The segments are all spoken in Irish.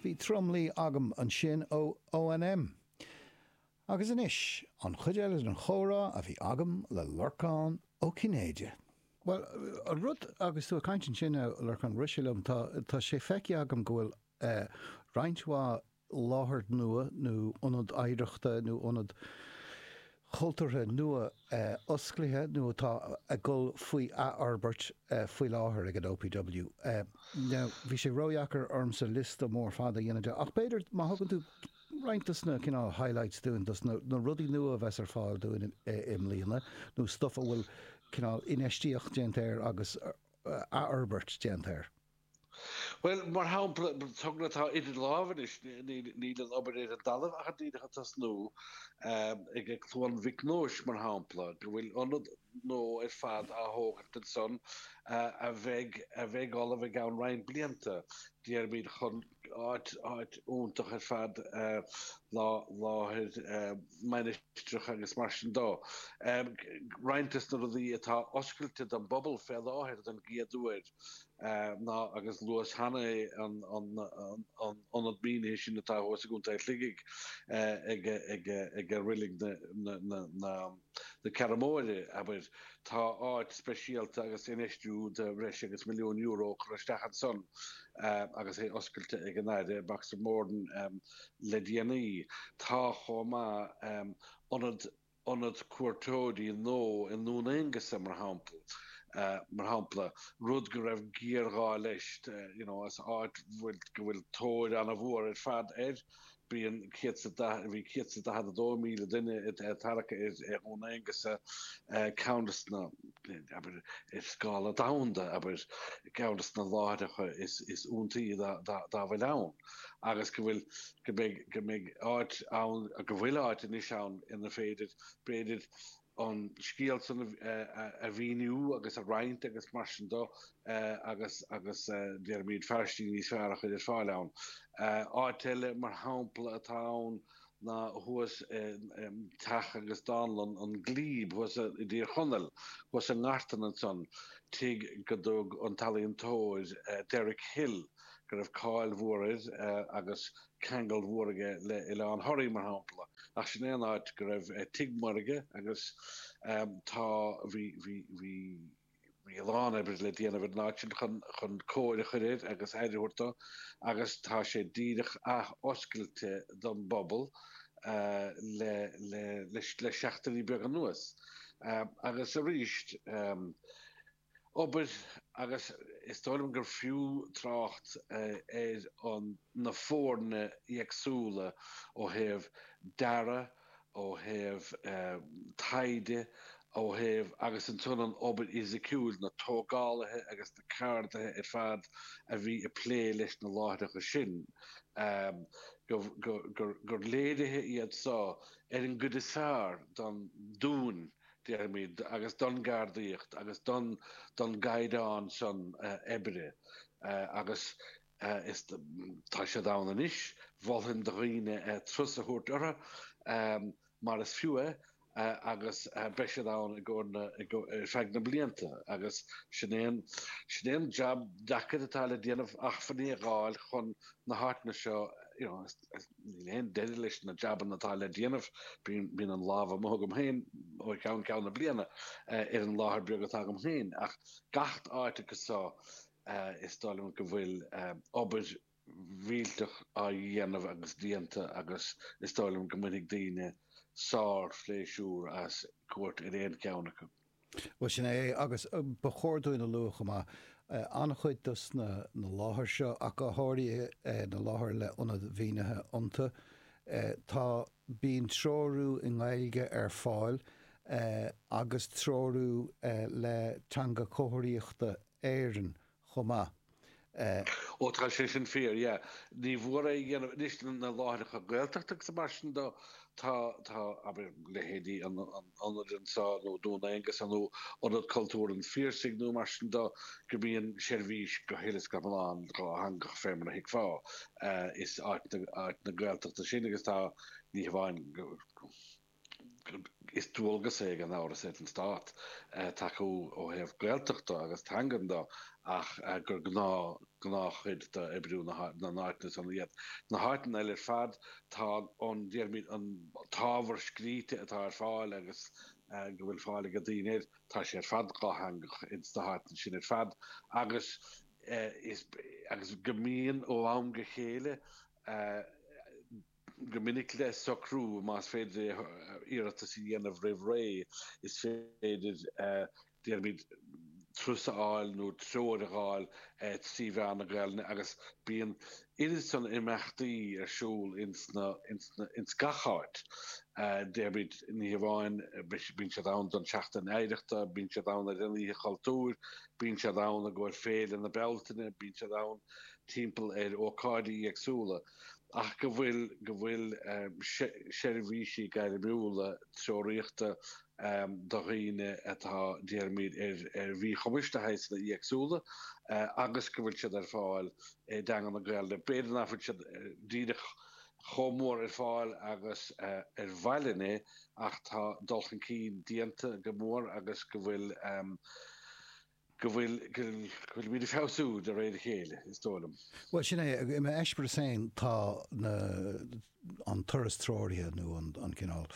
Bhí Drumlee agam ansin ó OMM. Agus anois, an chuid eile den chomhrá a bhí agam le Lorcán Ó Cinnéide. Bhuel, an rud agus tú ag caint ansin, a Lorcáin, rith sé liom, tá sé feicthe agam go bhfuil roinnt mhaith láthair nua nó ionad oidhreachta nó ionad cultúrtha nua osclaithe nó atá ag dul faoi athfhorbairt faoi láthair ag an OPW. Now, bhí sé ródheacair ormsa liosta mór fada a dhéanamh de, ach b'fhéidir má thugann tú roinnt dos na cineál highlights dúinn, dos na rudaí nua a bheas ar fáil dúinn i mbliana nó stuff a bhfuil cineál infheistíocht déanta air agus athfhorbairt déanta air. Bhuel, mar shampla, an togra atá idir lámha anois, níl an obair ar an dtalamh ach an díreach ag tosnú, ag Cluain Mhic Nóis, mar shampla, go bhfuil ionad nua ar fad á thógaint ansan a bheidh ullamh i gceann roinnt blianta, déarfaimid, chun áit iontach ar fad láthair mainistreach agus mar sin de. Roinnt de na rudaí atá oscailte don bpobal fé láthair don gcéad uair, ná agus luas cheana é an t-ionad mínithe sin atá thuas i gContae Shligigh ag reilig na Ceathrún Móire, abair. Tá áit speisialta agus infheistiú de bhreis agus milliún euro curtha isteach ansan agus é oscailte ag an Aire Boxer Moran le déanaí. Tá chomh maith ionad. ionad cuairteoirí nua i nDún Aonghusa, mar shampla, mar shampla, rud go raibh géarghá leis, you know, as áit go bhfuil tóir an-mhór ar fad air. Bíonn céad is a, bhí céad is a daichead a dó míle duine anuraidh i nDún Aonghusa, ceann des na, abair, ar scála domhanda, abair, ceann de na láithreacha is iontaí dá bhfuil ann. agus go bhfuil, go mbeidh, go mbeidh áit ann, go bhfuil áit anois ann ina féidir, b'fhéidir, an scéal san a mhíniú agus a roinnt agus mar sin de, agus déarfaimid facilities níos fearr a chur ar fáil ann. Áit eile, mar shampla, atá ann ná thuas i dteach agus dánlann an Glebe thuas i dTír Chonaill, thuas i nGartan ansan, tigh go dtug an t-ealaíontóir Derek Hill, go raibh cáil mhór air agus ceangal mór aige le Oileán Thoraí, mar shampla, ach sin é an áit go raibh tigh maorga agus tá, bhí, bhí, bhí, bhí a lán oibre le déanamh ar an áit sin chun, chun cóir a chur air agus aire a thabhairt dó agus tá sé díreach ath-oscailte don bpobal le, le, le seachtainí beaga anuas agus arís. obair agus is dóigh liom gur fiú trácht ar na foirne éagsúla ó thaobh dearaidh, ó thaobh taighde, ó thaobh, agus ansan an obair fhisiciúil, na tógálaithe agus na ceardaithe ar fad a bhí ag plé leis na láithreacha sin, gur léirithe iad seo ar an gcuid is fearr den dúchas. déarfaimid, agus don gceardaíocht agus don don gcaighdeán san oibre agus is tá siad ann anois, mholfainn do dhaoine turas a thabhairt orthu mar is fiú é agus beidh siad ann i gcomhair na ar feadh na blianta agus sin é an sin é an jab deacair atá le déanamh acmhainní a fháil chun na háiteanna seo you know Níl aon deireadh leis na jabanna atá le déanamh. Bíonn an lámh amuigh agam féin ó cheann ceann na bliana ar an láthair beag atá agam féin, ach gach áit acu seo is dóigh liom go bhfuil obair mhillteach á déanamh agus déanta agus is dóigh liom go mbainfidh daoine sár-phléisiúr as cuairt ar aon cheann acu. Bhuel, sin é, agus ba chóir dúinn a lua chomh maith, an-chuid de na láithreacha seo, ach go háirithe na láithreacha le hionad mínithe iontu, tá, bíonn treorú i nGaeilge ar fáil agus treorú le Teanga Chomharthaíochta na hÉireann chomh maith. Ó tá sé sin fíor, yeah. Ní bhfuair aon dhéanamh, anois na láithreacha Gaeltachta agus mar sin de, tá, tá, abair leithéidí an ionaid ansan nó Dún Aonghasa nó Ionad Cultúrtha an Phiarsaigh nó mar sin de go mbíonn seirbhís go huile is go hiomlán dátheangach fé mar a thuigfeá. Is áit na, áit na Gaeltachta sin agus tá, ní hamháin go. Is dualgas é gan amhras ar an stát tacú ó thaobh Gaeltachta agus teangan de ach gur gnáth, gnáthchuid d'oibriú na n-áiteanna san iad. Sna háiteanna eile ar fad tá an, déarfainn, an t-ábhar scríte atá ar fáil agus go bhfuil fáil ag daoine air, tá sé ar fad dátheangach ins na háiteanna sin ar fad agus is, agus go mbíonn ó am go chéile, go minic le socrú más féidir é, iarratas a dhéanamh roimh ré, is féidir, déarfaimid, turas a fháil nó treoir a fháil trí mheán na Gaelainne agus bíonn oiread san imeachtaí ar siúl ins gach áit, déarfaimid, ní hamháin, bíonn siad ann don tSeachtain Oidhreachta, bíonn siad ann ar an Oíche Chultúir, bíonn siad ann i gcomhair Féile na Bealtaine, bíonn siad ann timpeall ar ócáidí éagsúla. ach go bhfuil go bhfuil seirbhísí gairmiúla treoraíochta do dhaoine atá, déarfaimid, ar mhíchumais de shaghsanna éagsúla agus go bhfuil siad ar fáil i dteanga na Gaeilge. B'fhéidir nach bhfuil siad díreach chomh mór ar fáil agus ba mhaith linn é ach tá dul chun cinn déanta go mór agus go bhfuil, go bhfuil muid ag feabhsú de réir a chéile, is dóigh liom. Bhuel, sin é. I m'eispéireas féin, tá an turas treoraithe, nó an cineál,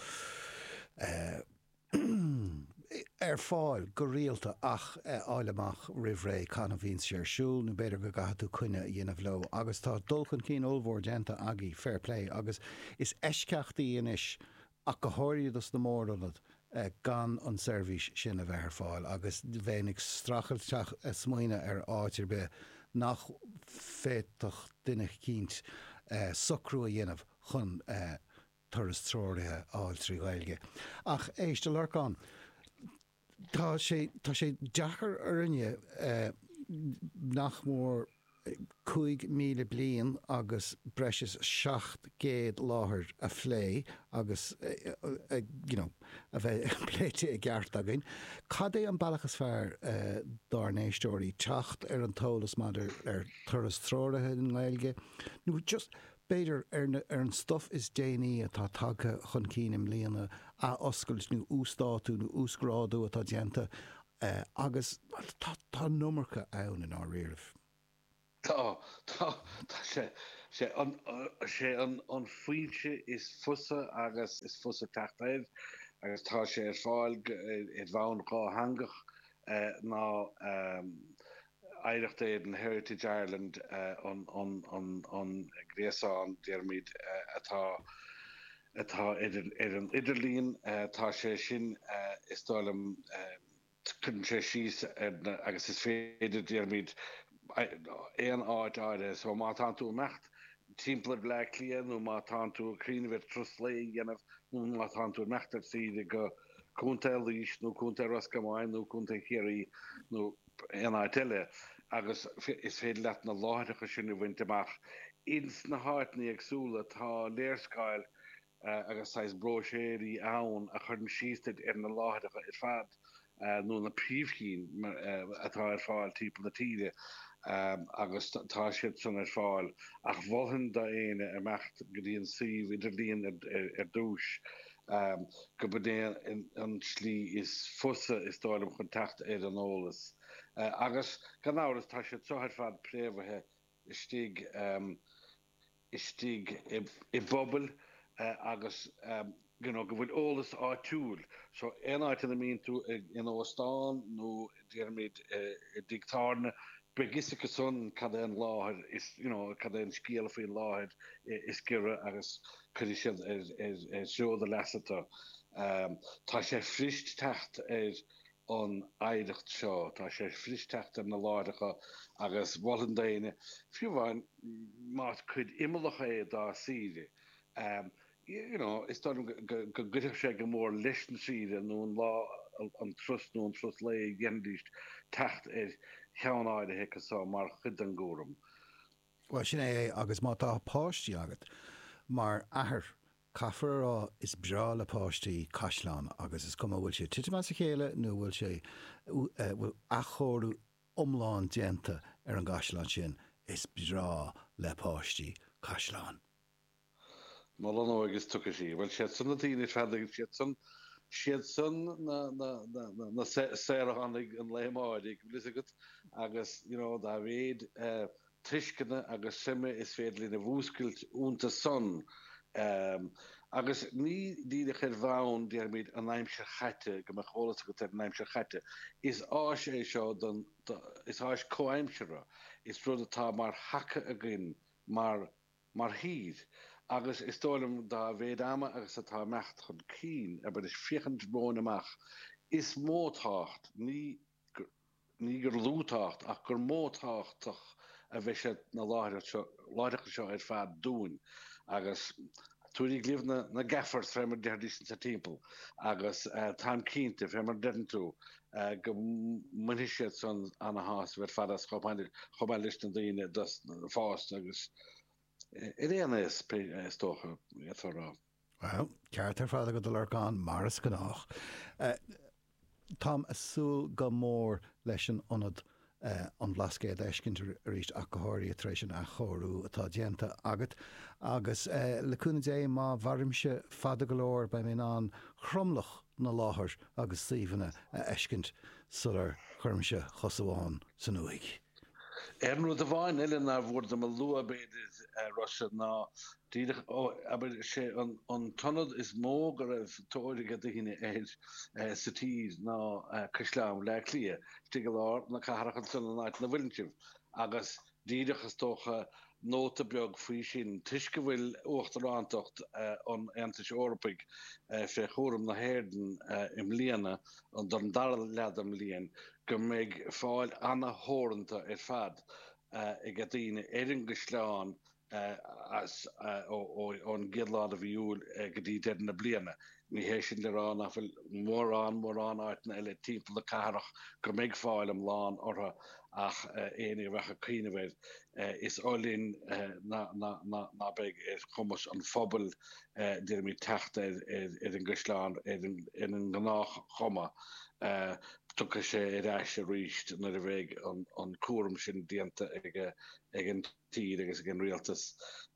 ar fáil go rialta ach fháil amach roimh ré cathain a bhíonns sé ar siúl, nó b'fhéidir go gcaithfidh tú coinne a dhéanamh leo. Agus tá dul chun cinn ollmhór déanta agaibh, fair play, agus is eisceachtaí anois ach go háirithe dos na mór-ionaid, gan an seirbhís sin a bheith ar fáil agus bheinn ag streachailt smaoineadh ar áit ar bith nach bhféadfadh duine eicínt socrú a dhéanamh chun turas treoraithe a fháil trí Ghaeilge. Ach éist, a Lorcáin. Tá sé, tá sé deacair orainne, nach mór cúig míle bliain agus breis is seacht gcéad láthair a phlé agus you know, a bheith pléite i gceart againn. Cad é an bealach is fearr dár n-éisteoirí teacht ar an t-eolas maidir ar turas treoraithe i nGaeilge nó just B'fhéidir, ar an stuif is déanaí atá tagtha chun cinn i mbliana, athoscailt nó uasdátú nó uasghrádú atá déanta agus tá an iomarca ann i ndáiríre. Tá, tá, tá sé, sé an, sé an an fhoinse is fusa agus is fusa teacht air agus tá sé ar fáil go, ar bhonn dhátheangach ná, Oidhreacht Éireann, Heritage Ireland an gréasán, déarfaimid, atá ar an idirlíon. Tá sé sin, is dóigh liom, cuireann sé síos ar na, agus is féidir, déarfaimid, aon áit áirithe. So má tánn tú ag imeacht timpeall ar Bhleá Cliath nó má tánn tú ag cuimhneamh ar turas lae a dhéanamh nó má tánn tú ag imeacht ar saoire go Contae Laois nó Contae Ros Comáin nó Contae Chiarraí nó aon áit eile agus is féidir leat na láithreacha sin a bhaint amach ins na háiteanna éagsúla. Tá léarscáil agus saghas bróiséirí ann a chuireann síos duit ar na láithreacha ar fad nó na príomhchinn atá ar fáil timpeall na tíre agus tá siad san ar fáil ach mholfainn d'éinne imeacht go dtí an suíomh idirlíon ar dtús. gurb é an tslí is fusa, is dóigh liom, chun teacht ar an eolas. Agus, gan amhras, tá siad seo ar fad préamhaithe istigh istigh i bpobail agus, you know, go bhfuil eolas áitiúil. So, aon áit ina mbíonn tú ag, in óstán nó déarfaimid i dtigh tábhairne, beidh 'fhios acu san cad é an láthair is, you know, cad é an scéal faoin láthair is giorra agus cuirfidh siad ar threo do leasa tú. Tá sé fuirist teacht ar an oidhreacht seo, tá sé fuirist teacht ar na láithreacha agus mholfainn d'éinne, fiú amháin más cuid imeallach é dá saoire, you know, is dóigh liom go gcuirfeadh sé go mór leis an saoire nó an lá an turas nó an turas lae dá ndéanfaidís teacht ar cheann áirithe acu so mar chuid den gcúram. Bhuel, sin é é agus má tá páistí agat, mar athair, caithfidh mé a rá, is breá le páistí caisleáin agus is cuma bhfuil sé ag titim as a chéile nó bhfuil sé, bhfuil athchóiriú iomlán déanta ar an gcaisleán sin, is breá le páistí caisleáin. Mholainn ó agus tuigfidh siad. Bhuel, siad san na daoine is fearr, dtuigeann siad san, siad san na, na, na, na, na saoránaigh an lae amáirigh, bhfuil fhios agat, agus, you know, dá mhéid eh tuisceana agus suime is féidir linn a mhúscailt ionta san, em, agus ní díreach ar bhonn, déarfaimid, an aimsir chaite, go mbeadh eolas agat ar an aimsir chaite, is áis é seo don, do, is áis comhaimseartha, is rud atá mar thaca againn, mar, mar thír, agus is dóigh liom, dá mhéid ama agus atá imeacht chun cinn, abhailis féachaint romhainn amach, is mó tábhacht, ní ní gur lú tábhacht, ach gur mó tábhachtach a bheidh sna láithreacha seo, láithreacha seo ar fad dúinn. Agus tabhairigí libh na na ngasúrs, fé mar a déarfaidís insa timpeall, agus táim cinnte, fé mar a deireann tú, go mbainfidh siad san ana-shásamh ar fad as, chomh maith leis na daoine fásta agus d'aon aois, is dócha, d'fhéadfá a rá. Bhuel, ceart ar fad agat, a Lorcáin, mar is gnách. Táim ag súil go mór leis an ionad an Bhlascaoid a fheiscint arís ach go háirithe tar éis an athchóiriú atá déanta agat agus le cúnamh Dé má mhairimse fada go leor beidh mé in ann tromlach na láithreacha agus suíomhanna a fheiscint sular gcuirimse cos amháin san uaigh. Aon rud amháin eile nár mhór dom a lua, b'fhéidir, a Rossa, ná Díreach, abair, sé an t-ionad is mó go raibh tóir ag daoine air sa tír ná Caisleán Bhaile Átha Cliath, istigh i lár na cathrach ansan in aice linn féinig. Agus díreach, is dócha, nóta beag faoi sin, toisc go bhfuil uachtarántacht an Aontais Eorpaigh fé chúram na hÉireann i mbliana, don dara leath den mbliain, go mbeidh fáil ana-theoranta ar fad ag daoine ar an gcaisleán, as ón gcéad lá de mhí Iúil go dtí deireadh na bliana. Ní hé sin le rá nach bhfuil mórán mórán áiteanna eile timpeall na cathrach go mbeidh fáil iomlán orthu ach éinne a bheadh ag cuimhneamh air, is oth linn ná beidh ar chumas an phobail deirimid teacht ar an gCaisleán ar an ngnáthchuma. Tiocfaidh sé ar ais arís nuair a bheidh an cúram sin déanta ag an. tír agus ag an rialtas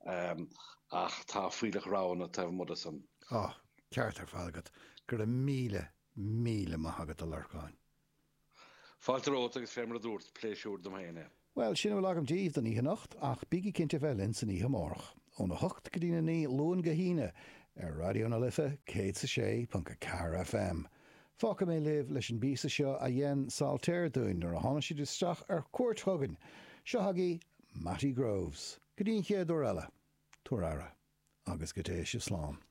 ach tá fuílleach roghanna taobh amuigh de san. Tá. Ceart ar fad agat. Go raibh míle, míle maith agat, a Lorcáin. Fáilte romhat agus fé mar a dúrt, pléisiúr dom fhéin é. Bhuel, sin a bhfuil agam díbh don oíche anocht ach bígí cinnte a bheith linn san oíche amárach, óna hocht go dtína naoi, Luan go hAoine, ar Raidió na Life 106.4 FM. Fágfaidh mé libh leis an bpíosa seo a dhein Saltair dúinn nuair a tháinig siad isteach ar chuairt chugainn, seo chugaibh Mattie Groves. Go dtí an chéad uair eile, tabhair aire, agus go dté sibh slán.